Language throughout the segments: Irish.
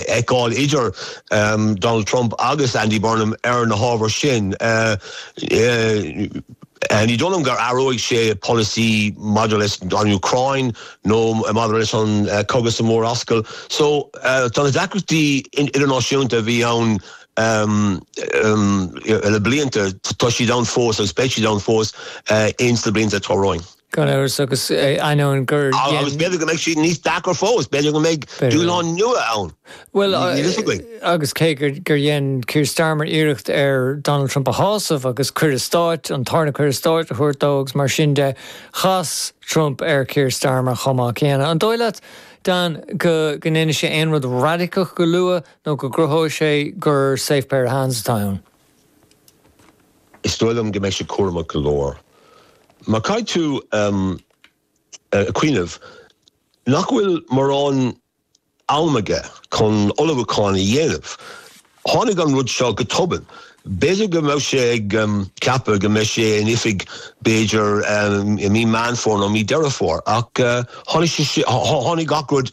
fheiceáil idir Donald Trump agus Andy Burnham ar na hábhair sin. Ní dóigh liom go n-athróidh sé a pholasaí maidir leis an Úcráin nó maidir leis an gcogadh sa Mhurascaill so tá na deacrachtaí idirnáisiúnta a bhí ann le blianta, tá siad ann fós agus beidh siad ann fós ins na blianta atá romhainn. Gan amhras, agus ainneoin gur dhein... Agus b'fhéidir go mbeidh siad níos deacra fós, b'fhéidir go mbeidh dúshláin nua ann, níl a fhios againn. Agus cé gur dhein Keir Starmer iarracht ar Donald Trump a shásamh agus cuireadh stáit, an tarna cuireadh stáit, a thabhairt dó agus mar sin de, chas Trump ar Keir Starmer chomh maith céanna. An dóigh leat, Dan, go ndéanfaidh sé aon rud raidiceach go luath nó go gcruthóidh sé gur safe pair of hands atá ann? Is dóigh liom go mbeidh sé cúramach go leor. Mar caithfidh tú cuimhneamh nach bhfuil mórán am aige chun ullmhúcháin a dhéanamh. Tháinig an rud seo go tobann. B'fhéidir go mbeadh sé ag ceapadh go mbeidh sé in oifig b'fhéidir i mí Meán Fómhair nó mí Deireadh Fómhair ach tháinig sé, tháinig gach rud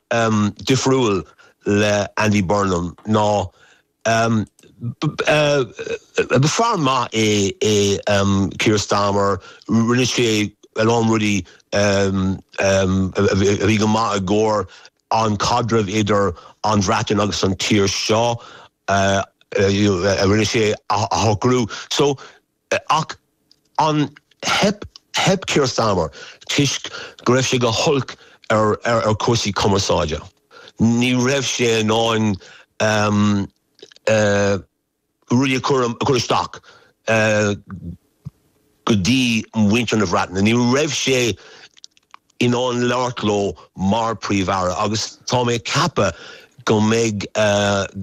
ehm, difriúil le Andy Burnham nó, ehm, ba fear maith é, é, ehm, Keir Starmer, rinne sé a lán rudaí, ehm, ehm, a bhí go maith i gcomhair an caidreamh idir an Bhreatain agus an tír seo, eh, you know, rinne sé a shocrú. So, Ach theip, theip Keir Starmer toisc go raibh sé go holc ar chúrsaí cumarsáide. Ní raibh sé in ann rudaí a chur, a chur isteach go dtí mhuintir na Bhreataine. Ní raibh sé in ann labhairt leo mar Príomh-Aire agus tá mé ag ceapadh go mbeidh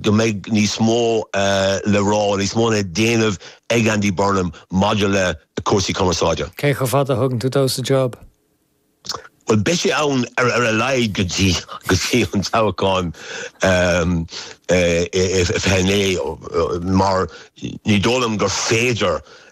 go mbeidh níos mó le rá, níos mó le déanamh ag Andy Burnham maidir le cúrsaí cumarsáide. Cé chomh fada a thugann tú dó sa job? Bhuel, beidh sé ann ar a laghad go dtí go dtí an toghchán i 29 mar ní dóigh liom gur féidir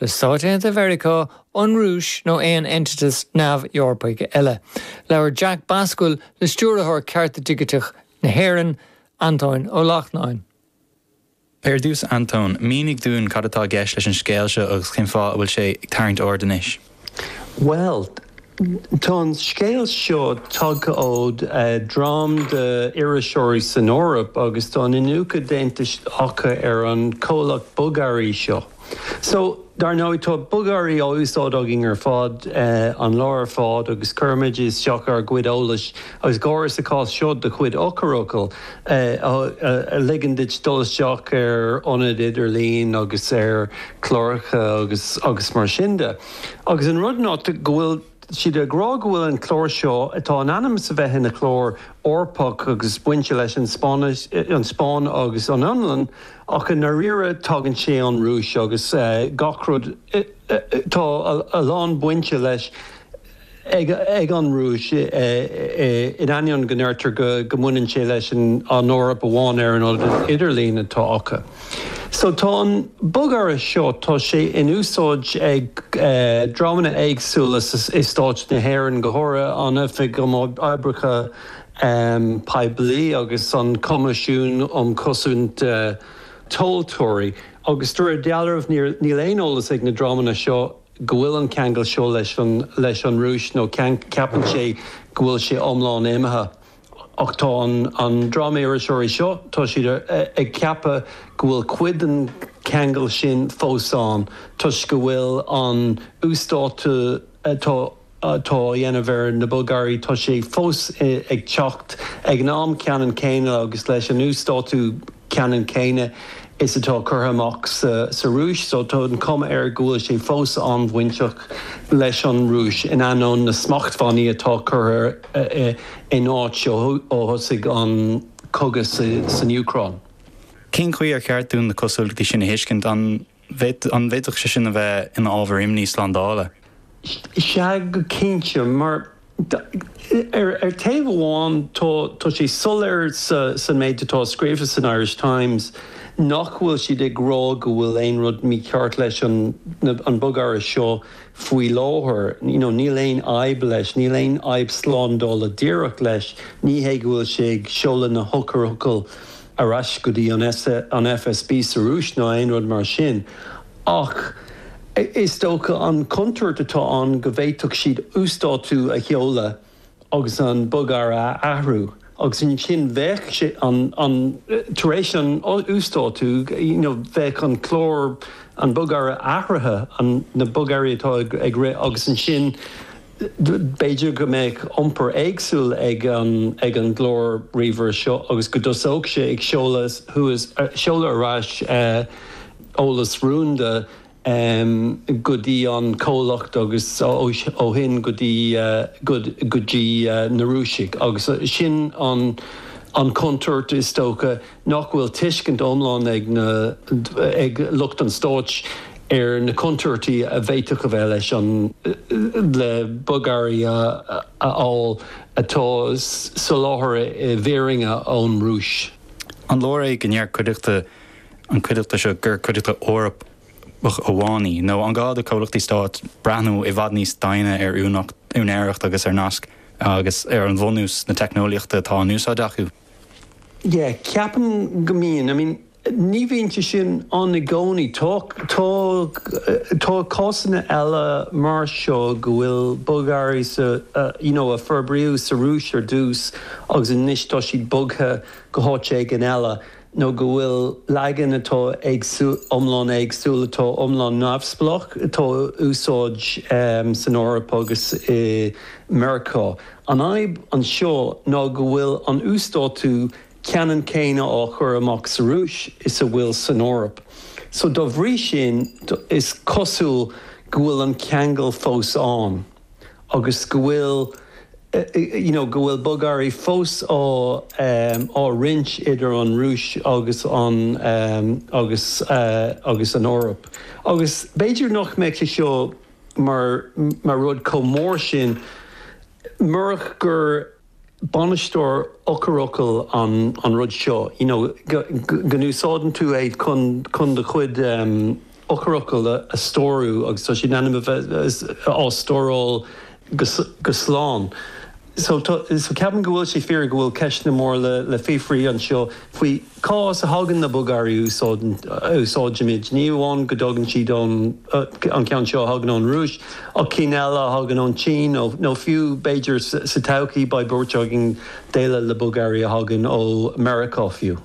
le Stáit Aontaithe Mheiriceá, an Rúis nó aon eintiteas neamh-Eorpaigh eile. Labhair Jack Bascuil le Stiúrthóir Cearta Digiteach na hÉireann, Antóin Ó Lachtnáin. Ar dtús, Antóin, mínigh dúinn cad atá i gceist leis an scéal seo agus cén fáth a bhfuil sé ag tarraingt aird anois. Bhuel, tá an scéal seo tagtha ó dhream d'iriseoirí san Eoraip agus tá iniúchadh déanta acu ar an chomhlacht bogearraí seo. So, dar ndóigh, tá bogearraí á úsáid againn ar fad, an lá ar fad, agus cuirimid isteach ár gcuid eolais agus go háirithe, sa chás seo, do chuid eochairfhocal, a ligeann duit dul isteach ar ionaid idirlín agus ar chláracha agus mar sin de. Agus an rud ná go bhfuil. Tá siad ag rá go bhfuil an clár seo, atá in ainm is a bheith ina chlár Eorpach agus bainte leis an Spáinn agus an Fhionlainn, ach i ndáiríre tagann sé ón Rúis agus gach rud, tá a lán bainte leis ag an Rúis in ainneoin go ndeirtear go mbaineann sé leis an Eoraip amháin ar an idirlíon atá acu. So tá an bogearra seo, tá sé in úsáid ag dreamanna éagsúla is Stáit na hÉireann, go háirithe an Oifig um Oibreacha Poiblí agus an Coimisiún um Chosaint Tomhaltóirí, agus de réir dealraimh níl aon eolas ag na dreamanna seo go bhfuil an ceangal seo leis an Rúis nó ceapann sé go bhfuil sé iomlán imithe. Ach tá an dream iriseoirí seo, tá siad ag ceapadh go bhfuil cuid den cheangal sin fós ann toisc go bhfuil an uasdátú atá á dhéanamh ar na bogearraí, tá sé fós ag teacht ag an am ceanann céanna agus leis an uasdátú ceanann céanna is atá curtha amach sa Rúis. So tá an chuma air go bhfuil sé fós an-bhainteach leis an Rúis in ainneoin na smachtbhannaí atá curtha in áit ó thosaigh an cogadh san Úcráin. Cén chaoi ar cheart dúinn na cosúlachtaí sin a thuiscint? An bhféadfadh sé sin a bheith ina ábhar imní slándála? Sea go cinnte, mar ar taobh amháin tá sé soiléir sa méid atá scríofa san Irish Times nach bhfuil siad ag rá go bhfuil aon rud mícheart leis an bogearra seo faoi láthair, you know níl aon fhadhb leis, níl aon fhadhb slándála díreach leis, ní hé go bhfuil sé ag seoladh na heochairfhocail ar ais go dtí an FSB sa Rúis ná aon rud mar sin, ach is dócha an chontúirt atá ann go bhféadfadh siad uasdátú a sheoladh, agus an bogearra a athrú agus ansin bheadh sé an, an, tar éis an uasdátú, you know, bheadh an clár, an bogearra athraithe, an, na bogearraí atá ag rith agus ansin b'fhéidir go mbeadh iompar éagsúil ag an, ag an gclár ríomhaire seo agus go dtosódh sé ag seoladh thuas, seoladh ar ais eolas rúnda. em, go dtí an comhlacht agus ó shin go dtí, go, go dtí na Rúisigh agus sin an, an chontúirt is dócha nach bhfuil tuiscint iomlán ag na, ag lucht an stáit ar na contúirtí a bhféadfadh a bheith leis an, le bogearraí a fháil atá soláthartha i bhfírinne ón Rúis. An leor é go ndeir cuideachta An chuideachta seo, gur cuideachta Eorpach amháin í? Nó an gá do chomhlachtaí stáit breathnú i bhfad níos doimhne ar úinéireacht agus ar naisc agus ar an bhunús na teicneolaíochta atá in úsáid acu? Yeah, ceapaim go mbíonn. I mean, ní bhíonn sé sin ann i gcónaí. Tá, tá, tá cásanna eile mar seo go bhfuil bogearraí sa, you know, a forbraíodh sa Rúis ar dtús agus anois tá siad bogtha go háit éigin eile. nó go bhfuil leagan atá éagsúil, iomlán éagsúil, atá iomlán neamhspleách, atá á úsáid san Eoraip agus i Meiriceá. An fhadhb anseo ná go bhfuil an uasdátú ceannann céanna á chur amach sa Rúis is a bhfuil san Eoraip, so dá bhrí sin is cosúil go bhfuil an ceangal fós ann. agus go bhfuil, you know, go bhfuil bogearraí fós á, á roinnt idir an Rúis agus an, agus, agus an Eoraip. Agus b'fhéidir nach mbeadh sé seo mar, mar rud chomh mór sin murach gur, bainisteoir eochairfhocail an rud seo you know go n-úsáideann tú é chun do chuid eochairfhocal a stórú agus tá siad in ainm a bheith á stóráil go slán so ceapaim go bhfuil sé fíor go bhfuil ceisteanna móra le fiafraí anseo faoi Cá as a thagann na bogearraí a úsáidimid? Ní amháin go dtagann siad ón, an ceann seo, a thagann ón Rúis, ach cinn eile a thagann ón tSín nó fiú b'fhéidir sa todhchaí beidh buairt againn déileáil le bogearraí a thagann ó Mheiriceá fiú.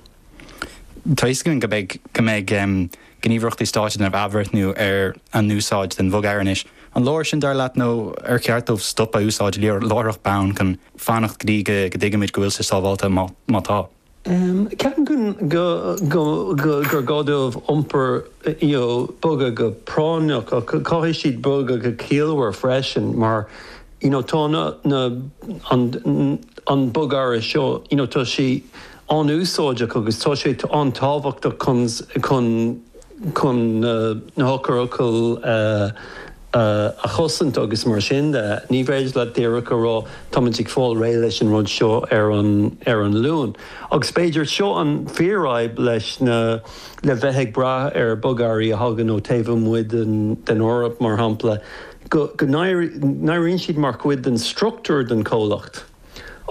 Tá a fhios againn go mbeidh, go mbeidh gníomhaireachtaí stáit ag déanamh athbhreithniú ar a n-úsáid den bhogearra anois. An leor sin dar leat nó ar cheart dóibh stopadh á úsáid láithreach bonn chun fanacht go dtí go dtuigfimid go bhfuil sé sábháilte, má tá? Ceapaim gur gá dóibh iompar, you know, bogadh go práinneach ach caithfidh siad bogadh go ciallmhar freisin mar, you know, tá na, an bogearra seo, you know, tá sé an-úsáideach agus tá sé an-tábhachtach chun, chun na heochairfhocail a chosaint agus mar sin de. Ní féidir leat díreach a rá táimid ag fáil réidh leis an rud seo ar an Luan. Agus b'fhéidir seo an fíorfhadhb leis na, le bheith ag brath ar bogearraí a thagann ó taobh amuigh den Eoraip mar shampla, go n-éiríonn siad mar chuid den struchtúr den chomhlacht.